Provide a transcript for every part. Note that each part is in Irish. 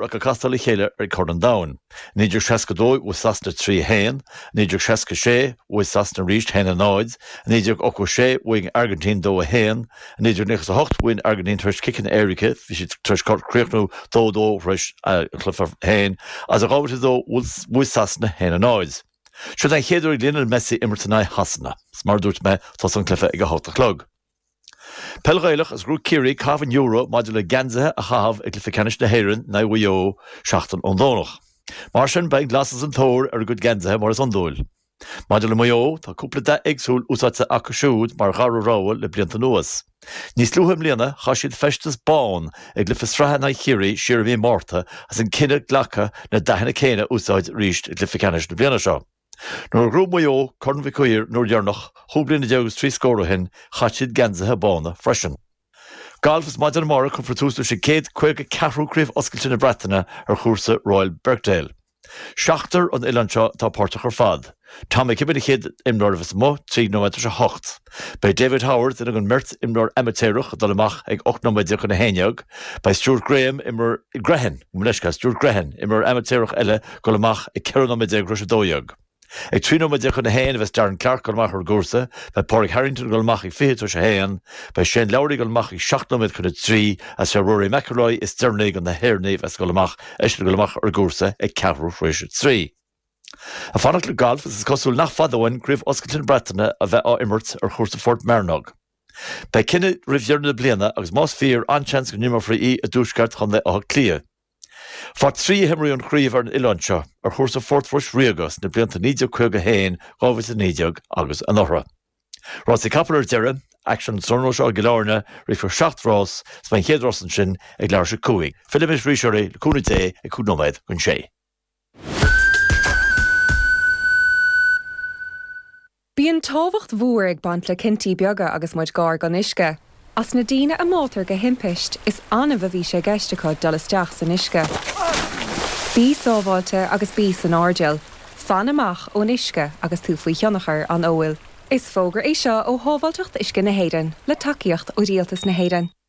Raic ag castáil le chéile ar Chorn an Domhain, 1962, bhuaigh Sasana 3-1, 1966, bhuaigh Sasana arís 1-0, 1986, bhuaigh an Airgintín 2-1, 1998, bhuaigh an Airgintín tar éis ciceanna éirice, bhí siad tar éis críochnú 2-2 tar éis an cluiche féin, is 2002, bhuaigh Sasana 1-0. Seod é an chéad uair ag Lionel Messi imirt in aghaidh Shasana, is mar a dúirt mé, tosóidh an cluiche ag a hocht a chlog. Peil Ghaelach is ghnóthaigh Ciarraí caitheamh an euro maidir le Geansaithe a Chaitheamh i gCluiche Ceannais na hÉireann in aghaidh Mhaigh Eo seachtain ón Domhnach. Mar sin, beidh an glas is an t-ór ar a gcuid geansaithe mar is iondúil. Maidir le Maigh Eo, tá cúpla dath éagsúil úsáidte acu siúd mar dhara rogha le blianta anuas. Níos luaithe i mbliana, chaith siad feisteas bán i gcluiche sraithe in aghaidh Chiarraí siar i mí an Mhárta agus an cinneadh glactha na dathanna céanna a úsáid arís i gcluiche ceannais na bliana seo. Nuair a ghnóthaigh Maigh Eo Corn Mhic Uidhir an uair dheireanach, chúig bliana déag agus trí scór ó shin, chaith siad geansaithe bána freisin. Galf Is maidin amárach cuirfear tús leis an gcéad caoga ceathrú Craobh Oscailte na Breataine ar chúrsa Royal Birkdale. Seachtar ón oileán seo atá páirteach ar fad. Tom McKibbin an chéad imreoir a bheas amuigh, trí nóiméad tar éis a hocht. Beidh David Howard duine den mbeirt imreoir amaitéarach ag dul amach ag 18 nóiméad chun 11. Beidh Stuart Graham, imreoir, Grehan, gabh mo leithscéal, Stuart Grehan, imreoir amaitéarach eile dul amach ag 14 nóiméad tar éis 12. Ag 13 nóiméad chun 1 a bheas Darren Clarke dul amach ar an gcúrsa. Beidh Pádraig Harrington dul amach ag 20 tar éis 1. Beidh Shane Lowry dul amach ag 17 nóiméad chun 3 agus sé Rory McIlroy is deireanaí de na hÉireannaigh a bheas dul amach, eisean dul amach ar an gcúrsa ag ceathrú tar éis 3. Ag fanacht le galf is is cosúil nach fada uainn Craobh Oscailte na Breataine a bheith á imirt ar chúrsa Phort Mearnóg. Beidh cinneadh roimh dheireadh na bliana agus más fíor an-seans go n-imreofaí í i dtuaisceart chontae Átha Cliath. Faoi thrí a himríodh an chraobh ar an oileán seo, ar chúrsa Phort Rois Ríoga sna blianta 1951, 2019 agus anuraidh. Rásaí capall ar deireadh, aicsean an tráthnóna seo i gCill Airne, rithfear seacht rás is beidh an chéad rás ansin ag leathuair tar éis 5. Fillimis arís oraibh, le cúnamh Dé, ag cúig nóiméad chun sé. Bíonn tábhacht mhór ag baint le cinntí beaga agus muid gar don uisce. As na daoine a mbáitear de thimpist, is annamh a bhí sé i gceist acu dul isteach san uisce. Bí sábháilte agus bí san airdeall. Fan amach ón uisce agus tú faoi thionchar an óil. Is fógra é seo ó Shábháilteacht Uisce na hÉireann, le tacaíocht ó Rialtas na hÉireann.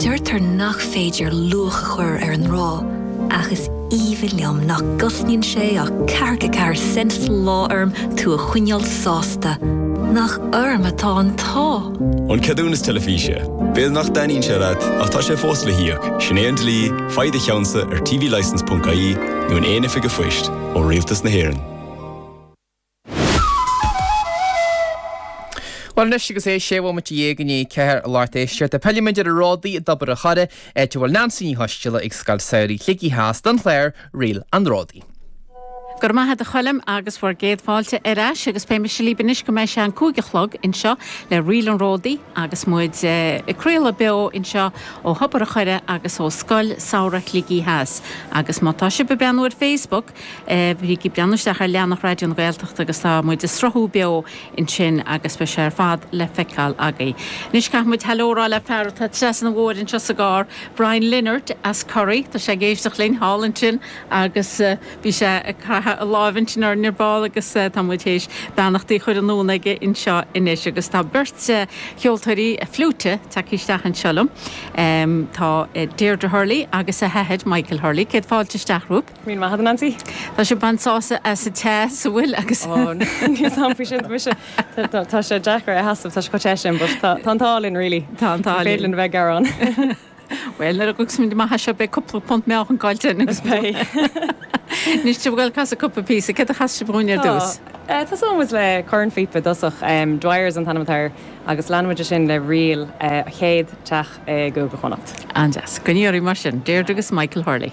Deirtear nach féidir luach a chur ar an ngrá, ach is aoibhinn liom nach gcosnaíonn sé ach ceathracha ceathair cent sa lá orm tú a choinneáil sásta. Nach orm atá an t-ádh! An ceadúnas teilifíse. B'fhéidir nach dtaitníonn sé leat, ach tá sé fós le híoc, sin é an dlí, faigh do cheannsa ar tvlicence.ie nó in aon oifig an phoist, ó Rialtas na hÉireann. Bhuel anois agus é sé bhomaite dhéag i ndiaidh a ceathair a lucht éisteachta fillfidh muid ar an Ródaí i dTobar an Choire, áit a bhfuil Neansaí Ní Choisdealbha ag Scoil Samhraidh Shligigh Theas don chlár Ríl an Ródaí. Go raibh maith agat a Choilm agus bhur gcéad fáilte ar ais agus beidh mise libh anois go mbeidh sé an cúig a chlog anseo le Ríl an Ródaí agus muid ag craoladh beo anseo ó Thobar an Choire agus ó Scoil Samhraidh Shligigh Theas agus má tá sibh ag breathnú ar Facebook Bígí ag breathnú isteach ar leathanach Raidió na Gaeltachta agus tá muid ag sruthú beo ansin agus beidh sé ar fad le feiceáil agaibh. Anois caithfidh muid haileo a rá le fear atá trasna uainn anseo sa gcarr, Brian Leonard as Corrie. Tá sé ag éisteacht linn thall ansin agus bhí sé ag caitheamh a láimhe ansin orainn ar ball agus tá muid th'éis beannachtaí a chur anonn chuige anseo anois. Agus tá beirt cheoltóirí fliúite tagtha isteach anseo liom. Tá Deirdre Hurley agus a hathair, Michael Hurley. Céad fáilte isteach romhaibh. Míle maith agat Neansaí. Tá sé b'fhearr seasamh as an teas a bhfuil agus. Ó níl a fhios agam faoi sin mise tá sé deacair a sheasamh tá sé chomh te sin but tá an t-ádh linn really. Tá an t-ádh linn. Ní féidir linn a bheith ag gearán. Bhuel nuair a ghabhfas muid amach as seo beidh cúpla punt meá caillte againn. Is beidh. Anois do bhuel casadh cúpla píosa. Cad a chasfaidh sibh dhúinn ar dtús? Tá. Tá muid ag tosú le cornphíopa i dtosach, Dwyer is an t-ainm atá air, agus leanfaidh muid ansin le ríl An Chéad teach i gCúige Chonnacht. An-deas. Ar aghaidh libh mar sin. Deirdre agus Michael Hurley.